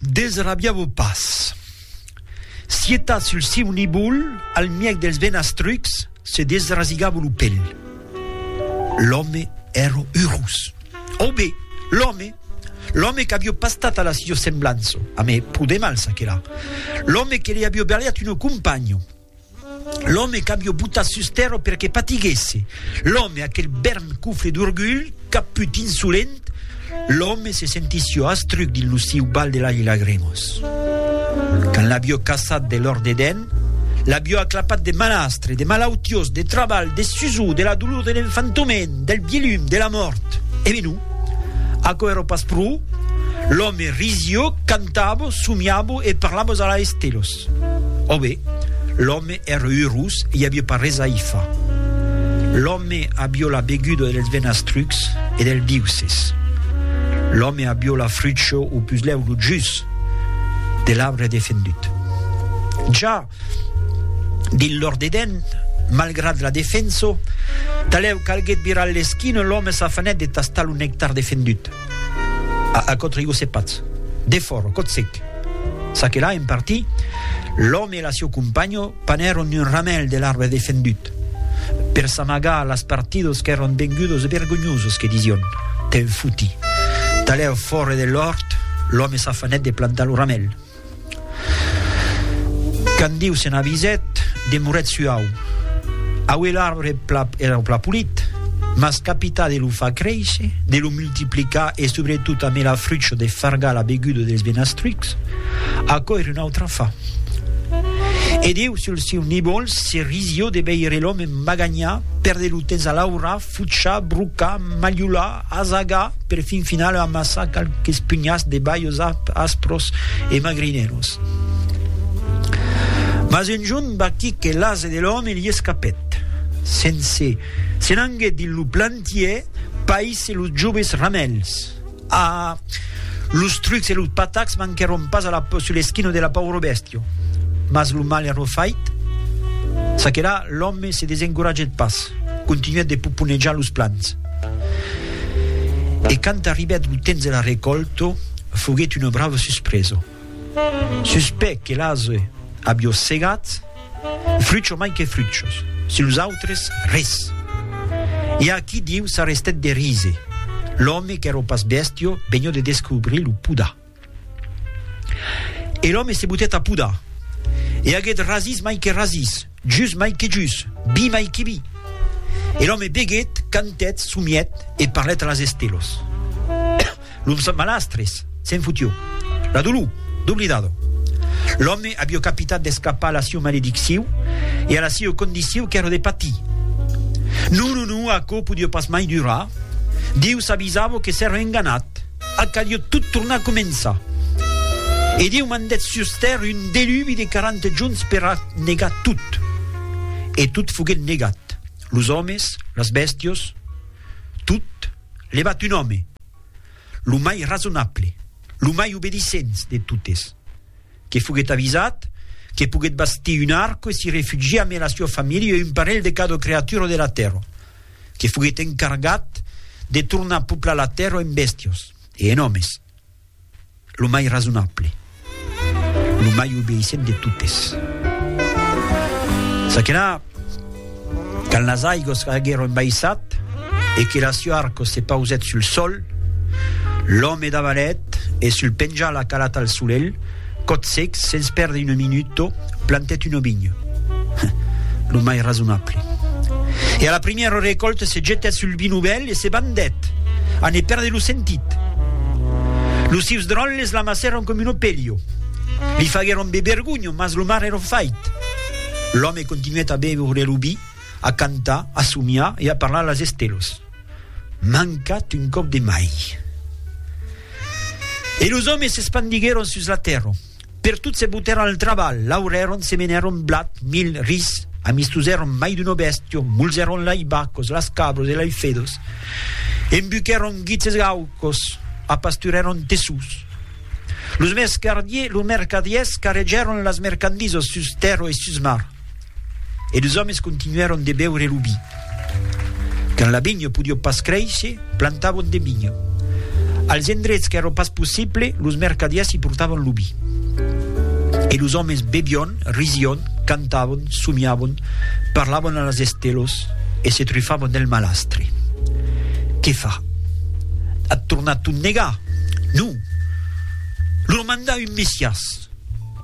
Desrabiá-vos pas. Sietatz sul siu nivol, al mièg dels venastrucs, se desrasigava lo pel. L'òme èra urós. Au be, l'òme! L'òme qu'avió pas stat a la sio semblança, amé, pro de mals, aquela. L'òme que li avió berliat una companha. L'òme qu'avió botat sus tèrra per que patiguèsse, l'òme, aquel bèrm cofre d'orgulh, caput, insolent, l'òme se sentissió astruc dins lo siu val de lach e lagrimos. Quand l'avió caçat de lor dedèn, l'avió aclapat de malastre, de malautiós, de trabalh, de susor, de la dolor de l'enfantoment, del vielhum, de la mòrt. E menon, aquò èra pas pro, l'òme risió, cantavo, somiavo e parlavo a la estelos. Ros. Ò be, l'òme ère urós e i avia pas res a i fa. L'òme abió la beguda dels venastrucs e del biuces. L'òme abió la frucho o puslèu lo jus de l'arbre defendut. Ja dins l'òrt d'Eden, malgrat la defenso, talèu calguèt virar l'esquina, l'òme s'afanèt de tastar lo nectar defendut. A aquò trigó se patz. De fòro, còth sec. Ça que là, en parti, l'òme e la sieu companho panèron un ramèl de l'arbre defendut, per s'amagar las partidos qu'èron vengudos e vergonhosos que disión, Te'n foti. Talèu fòre de l'òrt, l'òme s'afanèt de plantar lo ramèl. Quand Diu se n'avisèt, demorèt suau. Aué l'arbre pla, era pla polit, mas capità de lo far créisher, de lo multiplicar e subretot amé la frucho de fargar la beguda dels benastrucs, aquò er un autre afar. E Diu, sul siu nivol, se risió de veire l'òme magagnà, perdre lo temps a laurar, Fuchar, brocar, malholar, asagar, per fin final amassar qualques punhats de balhos aspros e magrinèlos. Mas un jorn vaquí que l'ase de l'òme li escapèt. Se'n se n'anguèt dins lo plantièr, païsse los joves ramèls. Ah! Los trucs e los patacs manquèron pas a la, sus l'esquina de la paura bèstia. Mas lo mal èra fait. Ça que là, l'òme se desencoratgèt pas, continuèt de poponejar los plans. E quand arribèt lo temps de la recòlta, foguèt una brava suspresa. Suspèc que l'ase a biossegat, frucho mai que fruchos, si los autres, res. I a qui diu s'arrestèt de rise, l'òme qu'èro pas bèstio vegno de descobrir lo podar. E l'òme se botèt a podar, e aguèt rasís mai que rasís, Jus mai que jus, bi mai que bi. E l'òme beguèt, cantèt, somièt e parlèt a las estelos. L'umson malastres, se'n futió. La dolor, doblidado. L'òme avió capitat d'escapar a la sieu maledicciu e a la sieu condiciu qu'èra de patir. Non, non, non, aquò podió pas mai durar. Diu s'avisavo que s'èra enganat. A caliot tot tornar a començar. E Dieu mandèt sus tèrra un delubi de quaranta junts per a negar tot. E tot foguèt negat, los òmes, las bèstios, tot, levat un òme, lo mai rasonable, lo mai obedisents de totes, que foguèt avisat que poguèt bastir un arco e s'i refugiar amé la sua familha e un parelh de cada creatura de la tèrra. que foguèt encargat de tornar poplar la tèrra en bèstias e en òmes, lo mai rasonable, lo mai obeissent de totes. Ça que là, quand las aigos aguèron baissat e que la sua arco se pausèt sul sòl, l'òme davalèt e sul penjà la calata al solelh, Còth sec, sens pèrder un minuto, plantèt un ovinho. Lo mai rasonable. E a la primièra recòlta se jetèt sul vi novèl e se bandèt, a ne pèrder lo sentit. Los sieus dròlles l'amassèron com un opelio. Li faguèron be vergonha, mas lo mar èra fait. L'òme continuèt a beure lo vi, a cantar, a somiar e a parlar a las estelos. mancat un còp de mai. E los òmes s'espandiguèron sus la tèrra. Pertot se botèron al trabalh, laurèron, semenèron blat, mil, ris, amistosèron mai d'una bèstia, mulzèron lei bacos, las cabras e lei fedas, embuquèron guits e gaucos, apasturèron tessús. Los mercadiers carregèron las mercandisas sus tèrra e sus mar. E los òmes continuèron de beure lo vi. Quand la vinha podió pas créisher, plantavon de vinha. Als endrets qu'èra pas possible, los mercadièrs i portavon lo vi. E los òmes bevión, risión, cantavon, somiavon, parlavon a las estelos e se trufavon del malastre. Qué far? At tornar tot negar? Non! Lor mandar un Messias!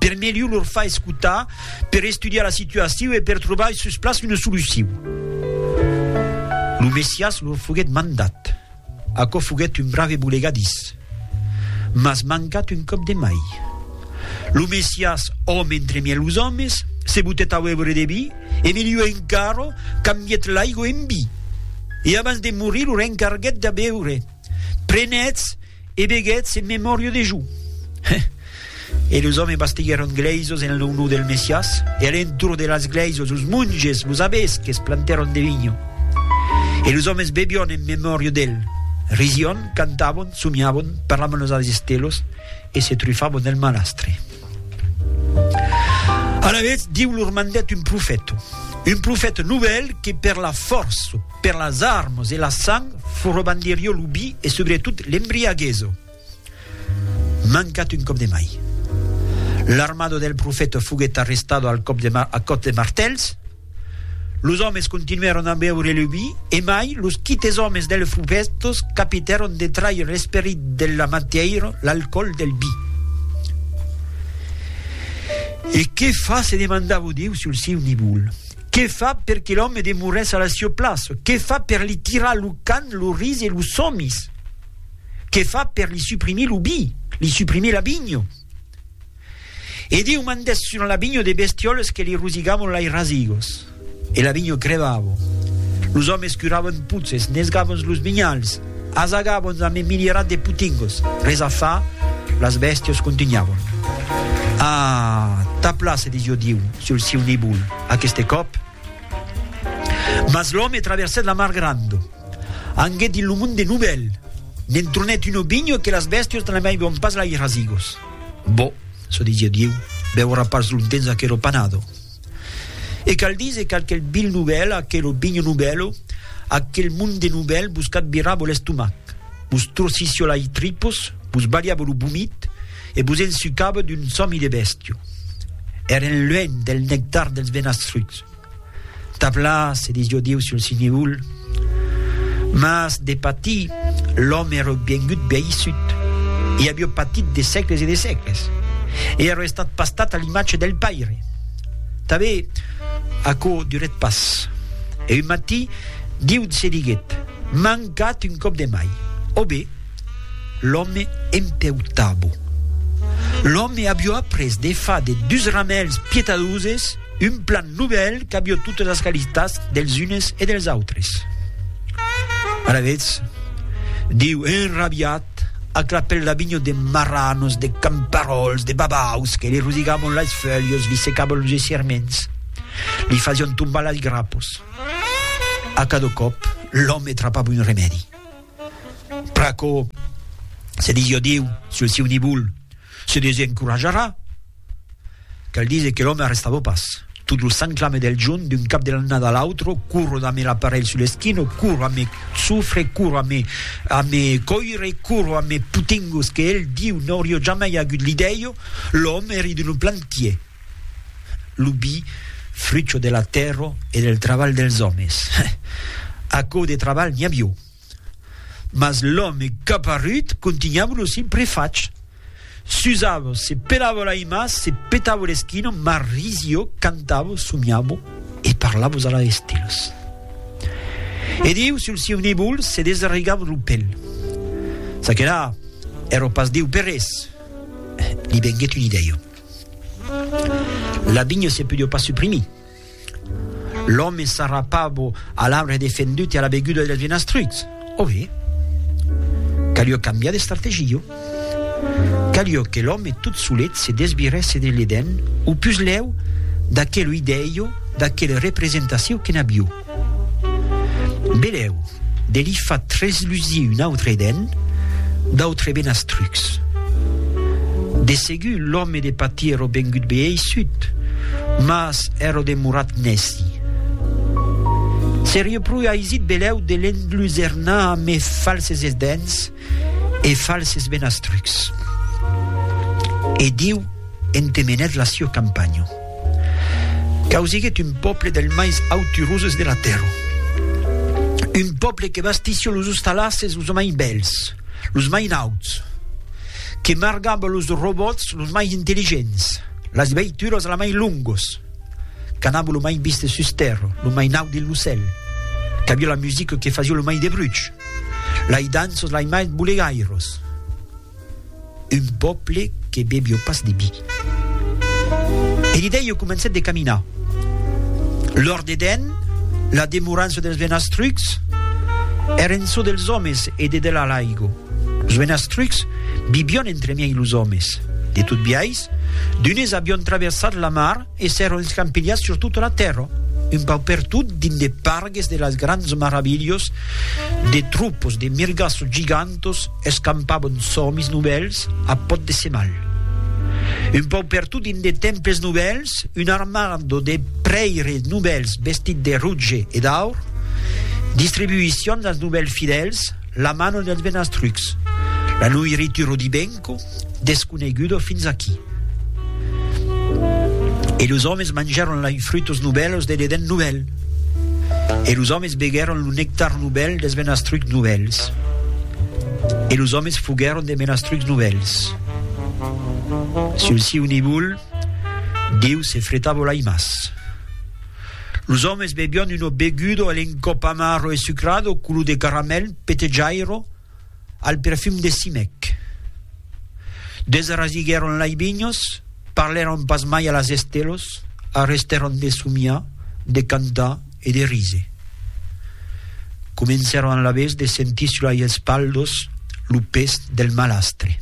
Per melhor lor far escotar per estudiar la situaciu e per trobar sus plaç una soluciu. Lo Messias lo foguèt mandat. Aquò foguèt un brave bolegadís. Mas mancat un còp de mai. Lo Messias, òme entre mièg los òmes, se botèt a uèvre de vi e miliu encara, cambièt l'aigo en vi. E abans de morir lo rencarguèt de beure. Prenètz, E veguetz en memòria de jo. E los òmes bastiguèron glèisos en lo nom del Messias, e a l'entorn de las glèisos los monges, los abbés que's plantèron de vinho. E los òmes bebion en memòria d'el, risión, cantabon, somiabon, parlabon los adestelos e se trufabon del malastre. Alavetz, Diu lor mandèt un profèto, un profèto novèl que per la fòrça, Per las armas e la sang frobandirio lo bi e subretot l'embriagueso. Mancat un còp de mai. L'armada del profeta foguèt arrestada al còp de a còps de martèls. Los òmes continuèron a beure lo bi e mai los quites òmes dels fubèstos capitèron de traire l'esperit de la matièira, l'alcòl del bi. E que fa? se demandava Diu sul siu nivol. Que fa per que l'òme demorèsse a la sieu plaça? Que fa per li tirar lo can, lo ris e los somis? Que fa per li suprimir lo bi, li suprimir la binho? E Diu mandèsse sur la binho de bestiòles que li rosigavon lai rasigos. E la binho crevavon. Los òmes curavan puces, nesgavons los binhals, As agabons a me milierat de putingos. Res a far, las bèstios contunhavon. Ah, tapla, se disió Diu sul siu nibol aqueste còp. Mas l'òme traversèt la mar grando, anguèt dins lo mond de Nubèl, n'entronèt un obinho que las bèstios n'amaivon pas l'air a zigos. Boh, se disió Diu, beurà pas longtemps aquero panado. E cal díser qu'aquel vil novèl, aquel obinho novèlo, aquel monde novèl vos cat virar vos l'estomac, vos trossissió lai tripos, vos balhava lo vomit e vos ensucava d'un sòmi de bèstia. Èren luènh del nectar dels venastrucs. Tap la, se disió Dieu sul Sineul. Mas de patir, l'òme èreu vengut veissut, e avieu patit de sècles e de sècles, e èreu estat pastat a l'imatge del Paire. Tanbe, aquò durèt pas, e un matin, Diu se diguèt, M'an gat un còp de mai. Òbe! L'òme empèu tabo. L'òme avió après de far de dus ramèls pietadoses un plan novèl qu'avió totes las qualitats dels unes e dels autres. Alavetz, diu enrabiat, ac la pèl d'avinho de marranos, de camparòls, de babaus, que li rosigavon las fèulhas, li secavon los esserments, li fasión tombar las grapos. A cada còp, l'òme trapava un remèdi. Pr'aquò, se disiá Diu sul siu nivol, se desencorajarà. Cal díser que l'òme arrestava pas. Tot lo sanclame del jorn, d'un cap de l'annada a l'autre, corro damb l'aparelh sul eschino, corro a me sofre, corro a me a me còire, corro a me potingos que el, Diu, n'auria jamai agut l'idèio, l'òme eri d'un plantier. Lo bi, frucho de la tèrra e del trabalh dels òmes. Aquò de trabalh n'i avió. Mas l'òme caparrut contunhava lo sin prefach. S'usava, se pelava l'aimas, se petava l'esquina, mas risió, cantava, somiava e parlava a las estelas. E Diu, sul sieu nebol, se desarregava lo pel. Ça que la, èra pas Diu per res. Li venguèt una idèia. La vinha se podió pas suprimir. L'òme s'arrapavo a l'arbre defendut e a la beguda dels vinastrucs. Ove? Calió cambiar d'estrategia. Calió que l'òme tot solet se desvirèsse de l'Eden, o pus lèu d'aquel oideio, d'aquela representacion que n'avió. Belèu, de li far treslusir un autre den, d'autres benas trucs. De segur, l'òme de patir èrò vengut beeissut, mas èrò demorat nèci. Serieu pro aisit belèu de l'enlusernar a mes falses dens e falses benas trucs. E Diu entemenèt la sieu campanha. Causiguèt un pòble del maiz auturoses de la tèrra. Un pòble que bastissi los ostalasses los mai bèls, los mai nauts, que margava los robòts los mai intelligents, las veituras la mai longos, qu'anava lo mai viste sus tèrra, lo mai naut dins lo cèl, qu'aviá la musica que fasia lo mai de bruch, lai danços lai mai bolegairos. Un pòble que bevió pas de vi. E Lidèio comencèt de caminar. Lors de dens, la demorança dels Venastrucs èra en çò dels òmes e de delà l'aigo. Los Venastrucs vivión entremiei los òmes. De tot biais, d'unes avión traversat la mar, E s'èron escampilhats sur tota la tèrra, un pauc per tot, dins de pargues de las grands maravilhas, de tropos de mirgas gigantas escampavan sòmis novèls a pòt de semal. Un pauc per tot dins de temples novèls, una armada de prèires novèls vestits de roge e d'aur distribuissián als novèls fidèls la mana dels benastrucs, la noiritura d'i ben, Quò desconegudo fins aquí. E los òmes mangèron lai frutos novèls de l'Eden novèl. E los òmes beguèron lo nectar novèl dels menastrucs novèls. E los òmes foguèron de menastrucs novèls. Sul siu nivol, Diu se fretavo lai mas. Los òmes bebion uno begudo a l'encòp amaro e sucrado, colo de caramèl, petejairo, al perfum de Simèc. Desrasiguèron lai vinhos, parlèron pas mai a las estelos, arrestèron de somiar, de cantar e de ríser. Comencèron alavetz de sentir sus lai espalhos lo pes del malastre.